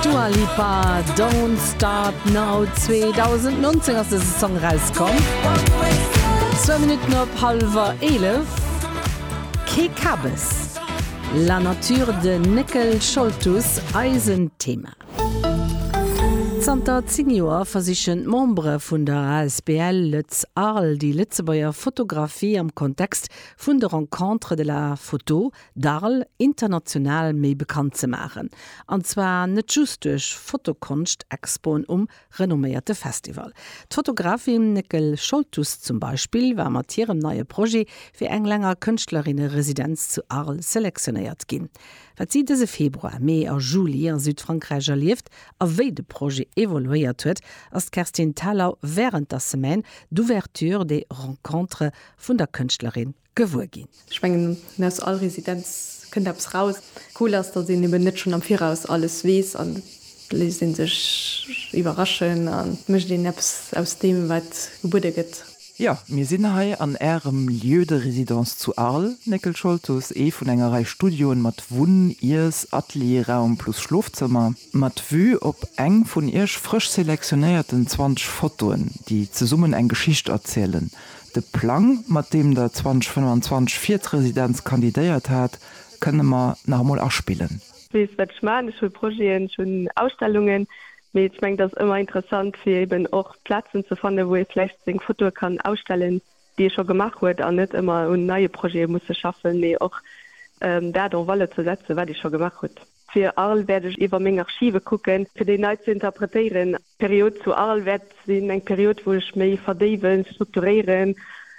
Dua Lipa, Don't Start Now, 2019 ass dëse Song erauskomm. Zwou Minutten op hallwer eelef. Kee Kabes. La Nature, de Néckel Scholtus, eisen Thema. Zanter 10 Joer versichen d'Membere vun der asbl Lëtz Arles déi Lëtzebuerger Fotografie am Kontext vun de Rencontres de la Photo D'Arl international méi bekannt ze maachen, an zwar net just duerch Fotokonscht-Expoen um renomméierte Festival. D'Fotografin Néckel Scholtus zum Beispill war mat hirem neie Projet fir eng länger Kënschtlerinne-Residenz zu Arl selektionéiert ginn. Wat si dëse Februar, Mee a Juli a Südfrankräich erlieft a wéi de Projet evoluéiert huet, ass d'Kerstin Thalau wärend der Semaine d'ouverture des rencontres vun der Kënschtlerin. gewuer ginn. Ech mengen, aus all Residenz kënnt eppes raus. Cool ass, datt een eben net schonn am Viraus alles weess an et léisst ee sech iwwerraschen an et mécht een eppes aus deem, wat gebuede gëtt. Jo, mir sinn hei an Ärem Lieu de résidence zu Arles, Néckel Scholtus, ee vun enger Rei Studioen mat Wunn-, Iess-, Atelierraum plus Schlofzëmmer, mat Vue op eng vun Iech frësch selektionéierten 20 Fotoen, déi zesummen eng Geschicht erzielen, De Plang, mat deem Der 2025 fir d'Residenz kandidéiert hat, kënne mer nach emol aspillen. Ech weess, wat ech maachen. Ech hu Projeten, ech hunn Ausstellungen. Mee ech mengen, et ass ëmmer interessant, fir eben och Plazen ze fannen, wou ee vläicht seng Fotoe kann ausstellen, déi ee scho gemaach huet, an net ëmmer un neie Projete musse schaffen, mee och dat en valeur ze setzen, wat ee scho gemaach huet. Fir Arles wäert ech iwwer meng Archive kucken, fir déi nei ze interpretéieren. D'Period zu Arles wäert sinn eng Period, wou ech méi verdéiwen, strukturéieren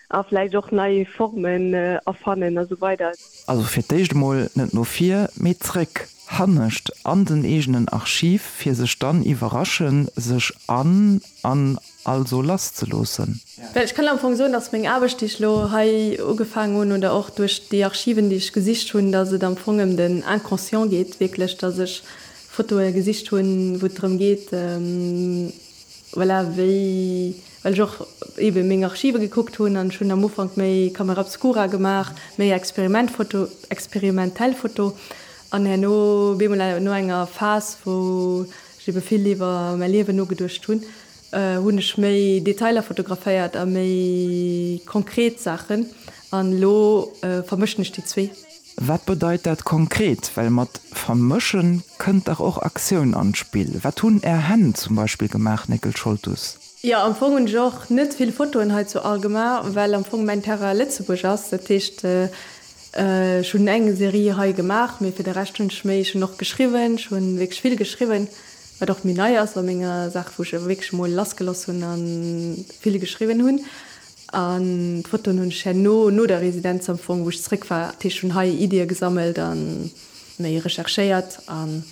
a vläicht och nei Formen erfannen a sou weider. Also fir d'éischt emol net no vir, mee zréck, hannescht an den eegenen Archiv, fir sech dann iwwerrasche sech an an also lass ze loossen. Well ech kënnen am Fong soen, dass meng Aarbecht, déi ech elo hei ugefaangen hunn, oder och duerch déi Archiven, déi ech gesicht hunn, dass et am Fong ëm den Inconscient geet, wierklech, dass ech Fotoe gesicht hunn, wou et drëm geet, voilà, wéi, well ech och ebe meng Archive gekuckt hunn, an ech hunn am Ufank méi Camera obscura gemaach, méi Experimentfoto, experimentell Foto, an herno bemol no enger Phas, wou ech ebe vill iwwer mäi Liewen nogeduecht hunn, Hunn ech méi Detailer fotograféiert a méi konkret Saachen an elo vermëschen ech déi zwee. Wat bedeit dat konkret? Well mat vermëschen kënnt dach och Aktioun an d'Spill. Wat hunn är Hänn zum Beispill gemaach, Néckel Scholtus? Jo, am Fong hunn ech och net vill Fotoen hei zu All gemaach, well am Fong mäin Terrain Lëtzebuerg ass. Dat heescht, ech hunn eng Serie hei gemaach, mee fir de Rescht hunn ech méi, ech hunn och geschriwwen, ech hunn wierklech vill geschriwwen. Wat och méi nei ass bei menger Saach, wou ech wierklech emol lassgeloss hunn a vill geschriwwen hunn. An d'Fotoen hunn ech herno, no der Residenz am Fong, wou ech zeréck war, dat heescht hunn hei Iddie gesammelt a méi recherchéiert an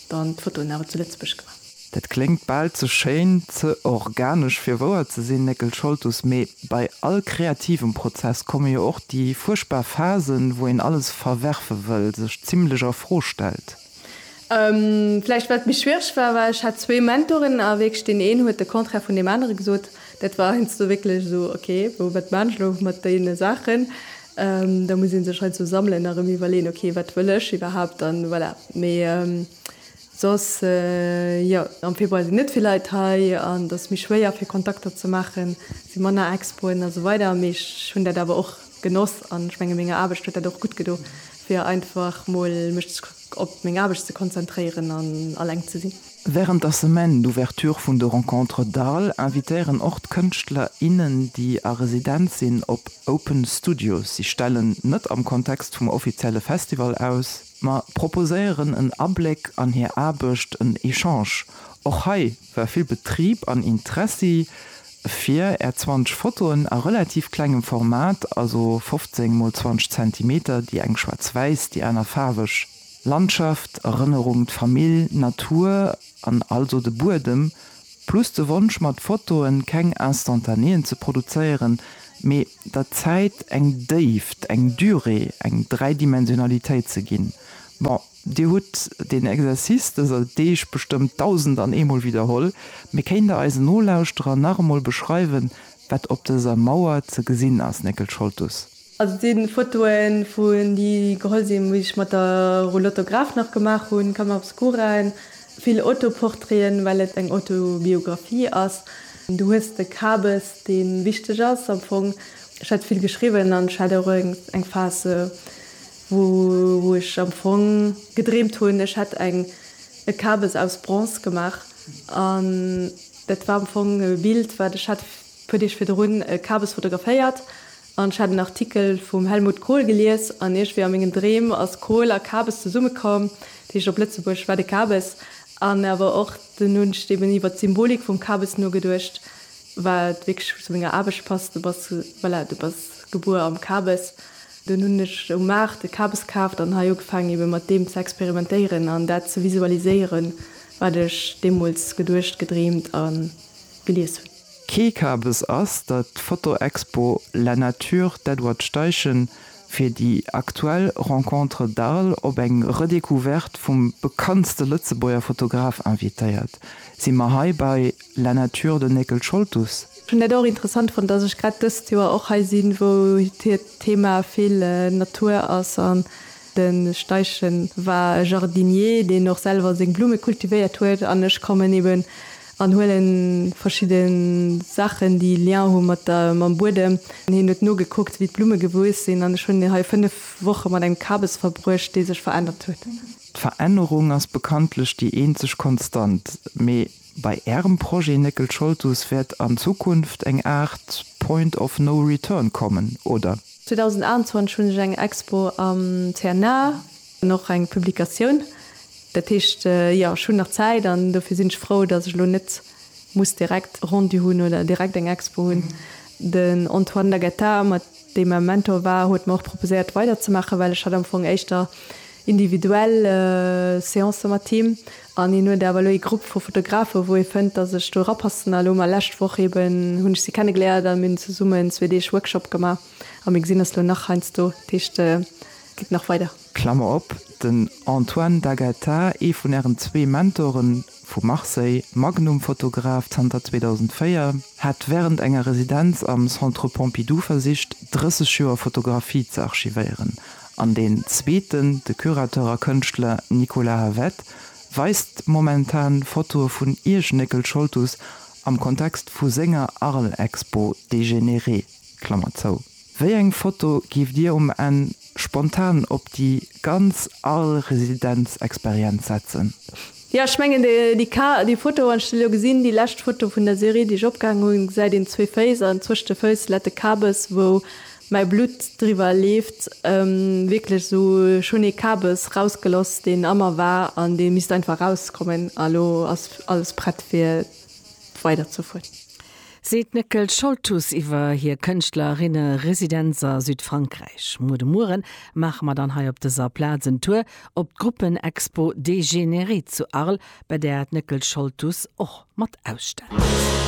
dann d'Fotoen awer zu Lëtzebuerg gemaach. Dat kléngt bal ze schéin, ze organesch fir wouer ze sinn, Néckel Scholtus. Mee bei all kreativem Prozess komme jo och déi fuerchtbar Phasen, wou een alles verwerfe wëll, sech zimlech a Fro stellt. Vläicht wat méi schwiereg war, war ech hat zwee Mentoren a wierklech deen een huet de Contraire vun deem anere gesot. Dat war heiansdo wierklech esou, ok, bon wat maan ech elo mat deene Saachen? Da muss ee sech heiansdo sammelen a rëm iwwerleeën, ok, wat wëll ech iwwerhaapt? An voilà. Mee soss jo, am Februar sinn net vill Leit hei an et ass méi schwéier fir Kontakter ze maachen, et si manner Expoen a sou weider. Mee ech hunn dat awer och genoss an ech menge menger Aarbecht huet dat och gutt gedo Fir einfach mol mech op meng Aarbecht ze konzentréieren an alleng ze sinn. Wärend der Semaine d'ouverture vun de Rencontres d'Arles invitéieren och d'Kënschtler, innen, déi a Residenz sinn, op Open Studio. Si stellen net am Kontext vum offizielle Festival aus, ma proposéieren en Abléck an hir Aarbecht, en Echange. Och hei War vill Betrib an Interessi fir är 20 Fotoen a relativ klengem Format, also 15 mol 20 Zentimeter, déi eng schwaarz-wäiss, déi aner faarweg, Landschaft, Erënnerung, d'Famill, Natur an also de Buedem, plus de Wonsch mat Fotoen keng Instantanéen ze produzéieren, mee der Zäit eng Déift, eng Durée, eng Dräidimensionalitéit ze ginn. Bon. Dir hutt deen Exercice dëser Deeg bestëmmt dausend an eemol widderholl, mee kéint Der eisen Nolauschterer nach emol beschreiwen, wat op dëser Mauer ze gesinn ass, Néckel Scholtus? Also et sinn Fotoen vun déi geholl sinn wéi ech mat der Roulotte Graf nach gemaach hunn, Camera obscura, vill Autoportraiten well et eng Autobiographie ass. Du hues de Kabes deen wichteg ass am Fong. Ech hätt vill geschriwwen an ech hat och eng Phase wou ech am Fong gedreemt hunn, ech hätt eng e Kabes aus Bronze gemaach an dat war am Fong e Bild, wat ech hat puer Deeg virdrun e Kabes fotograféiert an ech hat en Artikel vum Helmut Kohl gelies an iergendwéi a mengen Dreem ass Kohl a Kabes zesumme komm, dat heescht op Lëtzebuergesch war de Kabes an awer och dunn hunn ech eben iwwert d'Symbolik vum Kabes nogeduecht, wat wierklech zu menger Aarbecht passt, du bass, voilà, du bass gebuer am Kabes. Dunn hunn ech um Maart e Kabes kaaft an hei ugefaangen ebe mat deem ze experimentéieren an dat ze visualiséieren, wat ech deemools geduecht, gedreemt a gelies hunn. Kee Kabes ass der d'Fotoexpo La Nature d'Edward Steichen fir déi aktuell Rencontres d'Arles op eng Redécouverte vum bekanntste Lëtzebuerger Fotograf invitéiert, si mer hei bei La Nature den Néckel Scholtus. Ech hunn dat och interessant fonnt, dass ech grad dëst Joer och hei sinn, wou hir Thema vill Natur ass. An de Steichen war e Jardinier, deen och selwer seng Blumme kultivéiert huet. An ech kommen eben an huele verschidde Saachen, déi Lien hu mat der, mam Buedem. An hien huet nogekuckt, wéi d'Blumme gewuess sinn. An ech hunn hei fënnef Woche mat engem Kabes verbruecht, dee sech verännert huet. D'Verännerung ass bekanntlech déi eenzeg Konstant. Mee Bei Ärem Projet Néckel Scholtus wäert an Zukunft eng Aart Point of no return kommen, oder? 2021 hunn ech eng Expo am CNA an och eng Publikatioun. Dat heescht, jo, ech hunn nach Zäit an dofir sinn ech frou, dass ech elo net muss direkt e Rendu hunn oder direkt eng Expo hunn. Den Antoine Lagetta mat. dee mäi Mentor war, huet mer och proposéiert weider ze maachen, well ech hat am Fong éischter individuell Seancen mat him an hien huet awer elo ee Grupp vu Fotografen, wou hie fënnt, dass ech do rapassen. A lo mar lescht Woch eben hunn ech si kennegeléiert a mir hunn zesummen zwee Deeg Workshop gemaach a mir gesinn eis lo nach heiansdo. Dat heescht, et geet nach weider. Klammer op, Den Antoine D'Agata, ee vun Ären zwee Mentoren, vu Marseille, Magnum-Fotograf zanter 2004, hat wärend enger Residenz am Centre Pompidou versicht, 30 Joer Fotografie ze archivéieren, an deen zweeten, de Curateur a Kënschtler Nicolas Havet, weist momentan Fotoe vun Ierschnéckel Scholtus am Kontext vu senger Arles-Expo Dégénéré. Wéi eng Foto giift Dir um Enn spontan op déi ganz Arl Residenzexperienz setzen? Jo, ech mengen déi Ka, déi Foto, wann ech se elo gesinn, déi lescht Foto vun der Serie déi ech opgehaang hunn, gesäit een zwee Féiss an zwëscht de Fëuss lätt e Kabes wou mäi Blutt driwwer leeft, wierklech esou, ech hunn ee Kabes rausgeloss deen a mer war an dee misst einfach rauskommen a lo ass alles prett fir weider ze fueren. seet d'Néckel Scholtus iwwer hir Kënschtlerinne-Residenz a Südfrankräich. Muer de Mueren maache mer dann hei op dëser Plaz en Tour op d'Gruppen-Expo Dégénéré zu Arles, bei där d'Néckel Scholtus och mat ausstellt.